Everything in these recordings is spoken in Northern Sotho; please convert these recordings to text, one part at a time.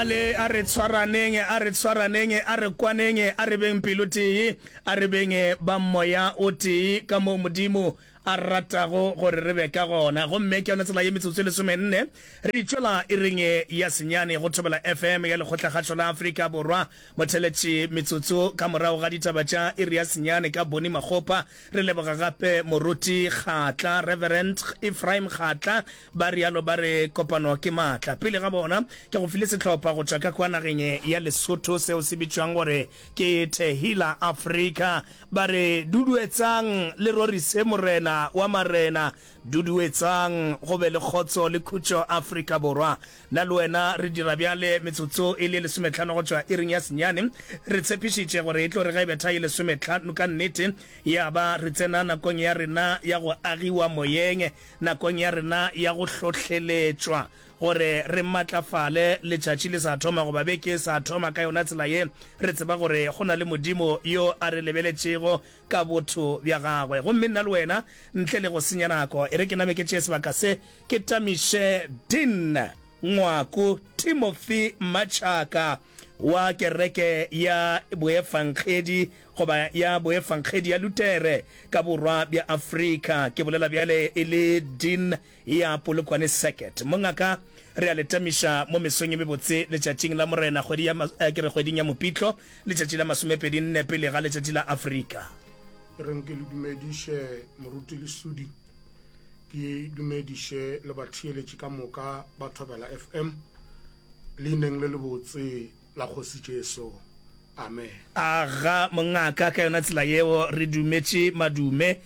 Bjale a re tshwaraneng, a re tshwaraneng, a re kwaneng, a re beng pelotee, a re beng ba Moya o tee, ka moo Modimo a ratago gore re be ka gona. Gomme ke yona tsela ye metsotso e lesomenne re di tšwela ireng ye ya senyane go Thobela FM ya Lekgotlakgašo la Afrika Borwa. Motheletši, metsotso ka morago ga ditaba tša iri ya senyane ka Bonnie Makgopa. Re leboga gape Moruti Kgatla, Reverend Ephraim Kgatla, Ba realo ba re kopano ke maatla. Pele ga bona ke go file sehlopha go tšwa ka kwa nageng ya Lesotho seo se bitšwang gore ke Tehila Africa. Ba re duduetsang le rorise Morena wa marena, duduetsang go be le kgotso le khutšo Afrika Borwa. Na le wena re dira bjale metsotso e le lesometlhano go tšwa iring ya senyane. Re tshepišitše gore e tlo re ge e betha e lesometlhano ka nnete ya ba re tsena nakong ya rena ya go agiwa moyeng. Nakong ya rena ya go hlohleletšwa gore re matlafale letšatši le sa thoma goba beke e sa thoma, ka yona tsela ye re tseba gore go na le Modimo yo a re lebeletšego ka botho bja gagwe. Gomme nna le wena, ntle le go senya nako, e re ke name ke tšee sebaka se ke tamiše Dean Ngwaku Timothy Machaka wa Kereke ya Boefangedi goba ya boefangedi ya Lutere ka borwa bja Afrika, ke bolela bjale e le Dean ya Polokwane Circuit. Mongaka, re a le tamiša mo mesong ye mebotse Letšatšing la Morena, kgwedi ya, eh, ke re kgweding ya Mopitlo, letšatši la masomepedi nne pele ga Letšatši la Afrika. E reng ke le dumediše, Moruti Lesudi, ke dumediše le batheeletši ka moka ba Thobela FM, leineng le lebotse. la Kgoši Jesu. Amen. A ga mongaka ka yona tsela yeo re dumetše madume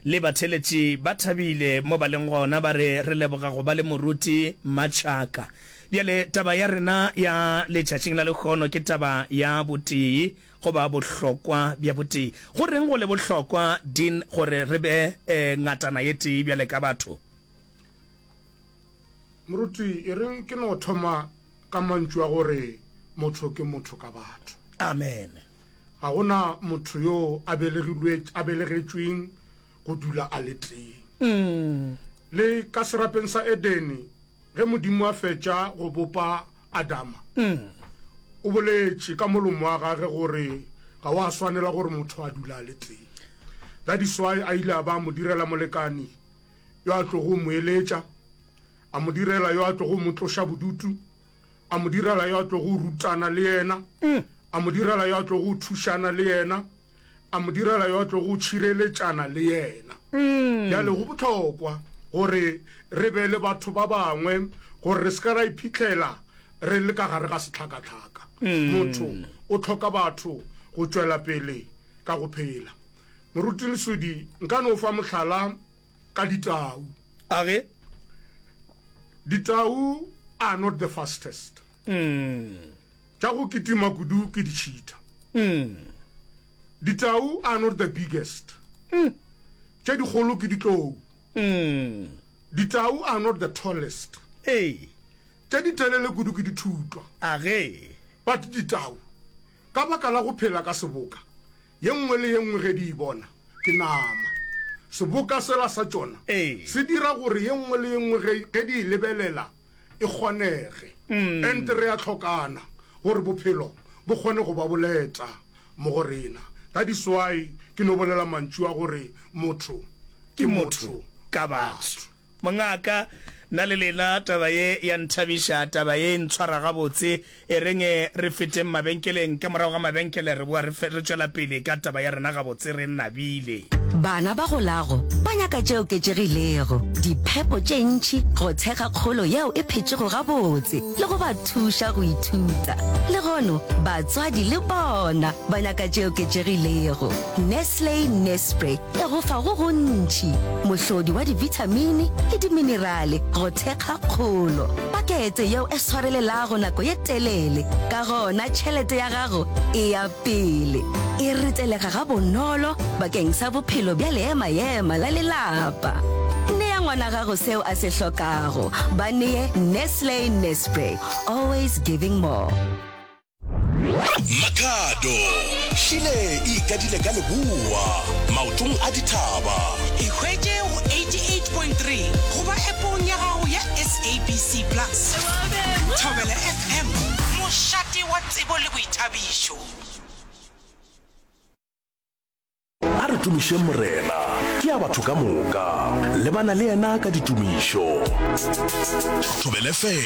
le batheletši ba thabile mo ba leng gona ba re re leboga go ba le moruti Machaka. Bjale taba ya rena ya letšatšing la lekgono ke taba ya botee goba bohlokwa bja botee. Go reng go le bohlokwa Dean gore re be eh, ngatana ye tee bjale ka batho? Moruti e reng ke no thoma Ka mantšu a gore motho ke motho ka batho. Amen. Ga go na motho yo a belegilwe a belegetšweng go dula a le tee. Mm. Le ka serapeng sa Edene ge Modimo a fetša go bopa Adama. Mm. O boletše ka molomo wa gage gore ga wa swanela gore motho a dula a le tee. That is why a ile a ba mo direla molekani yo a tlogo mo eletša A mo direla yo a tlogo mo tloša bodutu, a mo direla yo a tlogo rutana le yena, mm. a mo direla yo a tlogo thušana le yena, a mo direla yo a tlogo tšhireletšana le yena. Mm. Bjale go botlhokwa gore re be le batho ba bangwe gore re se ka ra iphitlhela re le ka gare ga setlhakatlhaka. Mm. Motho o tlhoka batho go tšwela pele ka go phela. Moruti Lesodi, nka no fa mohlala ka ditau a ge ditau are not the fastest mm. tša go kitima kudu ke ditšhita mm. ditau are not the biggest mm. tše dikgolo ke ditlou mm. ditau are not the tallest hey. tše ditelele kudu ke dithutwa a ge but ditau ka baka la go phela ka seboka Ye nngwe le ye nngwe ge di e bona, ke nama. Seboka sela sa tšona se dira gore ye nngwe le ye nngwe ge, ge di e lebelela e kgonege. And re a hlokana gore bophelo bo kgone go ba boleta mo go rena. That is why ke no bolela mantšu a gore motho ke motho ka batho. Mongaka, na le lena taba ye ya nthabiša, taba ye e ntshwara gabotse. E reng e re feteng mabenkeleng, ka morago ga mabenkele re boa re tšwela pele ka taba ya rena gabotse re nabile. Bana ba golago ba nyaka tše oketšegilego, diphepo tše ntši, go thekga kgolo yeo e phetšego gabotse le go ba thuša go ithuta. Legono batswadi le bona ba nyaka tše oketšegilego. Nestle Nespre e go fa go gontši, mohlodi wa dibithamini le diminerale go thekga kgolo. Pakete yeo e swarelelago nako ye telele, ka gona tšhelete ya gago e ya pele. E ritelega gabonolo bakeng sa bophelo bja leema-ema la lelapa. Nea ngwana gago seo a se hlokago. Ba nee Nestle Nespre, always giving more. Makhado šile e ikadile ka leboa maotong a dithaba. E hwetše go 88.3 goba App-ong ya gago ya SABC Plus. Thobela FM, mošate wa tsebo le boithabišo. A re tumišeng Morena, ke ya batho ka moka. Lebana le yena ka ditumišo. Thobela FM.